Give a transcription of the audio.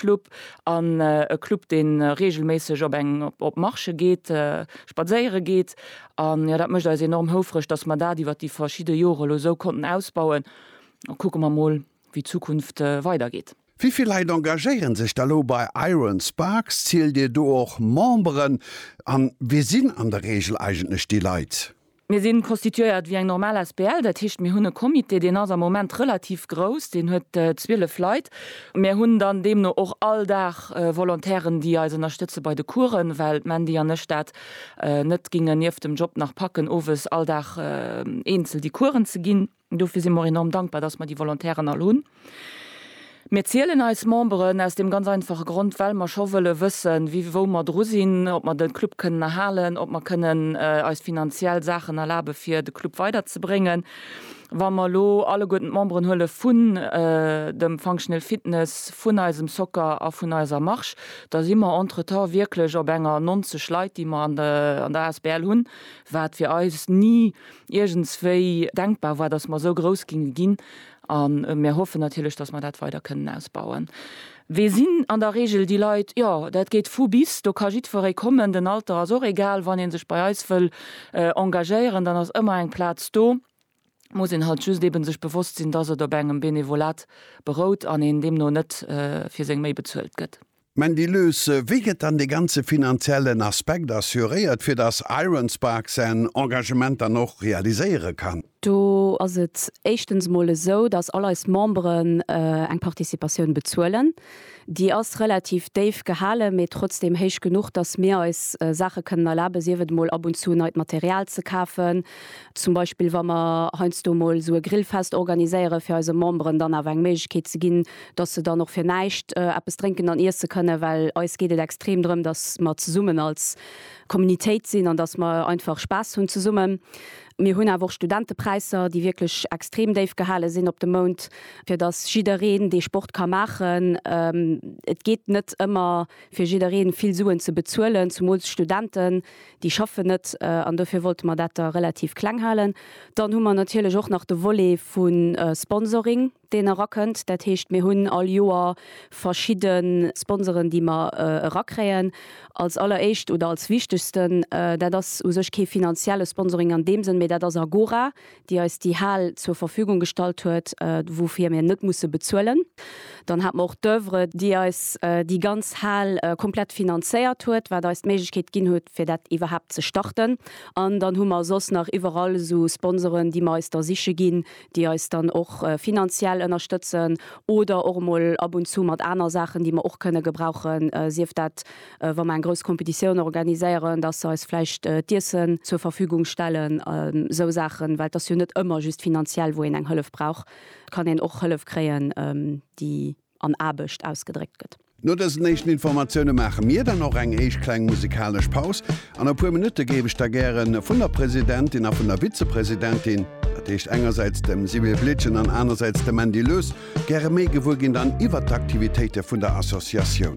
Sportclub an e Club deen regelméisseg op eng op Marche geet, spadséiere geet an jo dat mécht eis enorm houfreg dass mer dat iwwert déi verschidde Jore lo esou konnten ausbauen an kucke mer mol wéi d'Zukunft weider geet. Wivill Leit engagéieren sech da lo bei Iron Sparks? Zielt Dir do och Memberen an wie sinn an der Regel eigentlech déi Leit? Mir si constituéiert wéi eng normal Asbl. Dat heescht, mir hunn e Comité, deen ass am Moment relativ grouss, deen huet 12 Leit. Mir hunn dann deemno och all Dag Volontairen, déi eis ënnerstëtze bei de Coursen, well d'Mandy an ech dat net gingen nieft dem Job nach packen, owes all Dag eenzel déi Coursen ze ginn. Dofir si mer och enorm dankbar, dass mer déi Volontairen all hunn. Mir zielen eis Memberen aus deem ganz einfache Grond, well mer scho wëlle wëssen, wéi, wou mer dru sinn, ob mer de Club kënnen erhalen, ob mer kënnen eis finanziell Saachen erlabe fir de Club weiderzebréngen. Wa mer elo alleguerten d'Memberen huele vun dem Functional Fitness, vun eisem Soccer a vun eiser Marche, da si mer entretemps wierklech op enger 90 Leit, déi mer an der asbl hunn, wat fir eis ni iergendswéi denkbar war, dass mer esou grouss ginge ginn, a mir hoffen natierlech, dass mer dat weider kënnen ausbauen. Wee sinn an der Reegel déi Leit? Jo, dat geet vu bis, do ka jiddferree kommen, den Alter ass och egal. Wann ee sech bei eis wëll engagéieren, dann ass ëmmer eng Plaz do, muss een halt just eeben sech bewosst sinn, dass et op engem Benevolat berout an een deemno net fir seng Méi bezuelt gëtt. Mandy Lues, Wéi gëtt dann dee ganze finanziellen Aspekt assuréiert, fir datt Iron Spark säin Engagement dann och realiséiere kann? Do ass et éischtens mol esou, datt all eis Memberen eng Participatioun bezuelen. Déi ass relativ déif gehalen, mee trotzdeem héich genuch, datt mir eis Saache kënnen erlaben, sief et emol ab und zu neit Material ze kafen, zum Beispill wa mer heiansdo emol esou e Grillfest organiséiere fir eise Memberen dann awer eng Méiglechkeet ze ginn, dass se dann och fir näischt eppes drénken an iesse kënnen, well eis geet et extrem drëm, dass mer zesummen als Communitéit sinn an dass mer einfach Spaass hunn zesummen. Mir hunn awer och Studentepräisser, déi wierklech extrem déif gehale sinn op de Mount, fir dass jiddereen dee Sport ka maachen. Et geet net ëmmer, fir jidderee vill Suen ze bezuelen, zumools Studenten, déi schaffen net an dofir wollte mer dat da relativ kleng halen. Dann hu mer natierlech och nach de Volet vu Sponsoring. deen erakënnt. Dat heescht, mir hunn all Joer verschidde Sponsoren, déi mer erakréien. Als alleréischt oder als wichtegsten, dat ass u sech kee finanzielle Sponsoring an deem Sënn, mee dat ass Agora, déi eis déi Hal zur Verfügung gestallt huet, woufir mir net musse bezuelen. Dann hat mer och d'Oeuvre, déi eis déi ganz Hal komplett finanzéiert huet, wat eis d'Méiglechkeet ginn huet, fir dat iwwerhaapt ze starten. An dann hu mer soss nach iwwerall esou Sponsoren, déi mer eis da siche ginn, déi eis dann och finanziell ënnerstëtzen oder och emol ab und zu mat aner Saachen, déi mer och kënne gebrauchen, sief dat, wa mer eng grouss Competitioun organiséieren, dass se eis vläicht d'Iessen zur Verfügung stellen, esou Saachen, well et ass jo net ëmmer just finanziell, wou een eng Hëllef brauch, et kann een och Hëllef kréien, déi. an Aarbecht ausgedréckt gëtt. No dësen éischten Informatioune maache mir dann och eng éischt kleng musikalesch Paus. An e puer Minutte géif ech da gäre vun der Presidentin a vun der Vizepresidentin, dat heescht engersäits dem Sibylle Blietgen an anersäits dem Mandy Loes, gäre méi gewuer ginn dann iwwert d'Aktivitéite vun der Associatioun.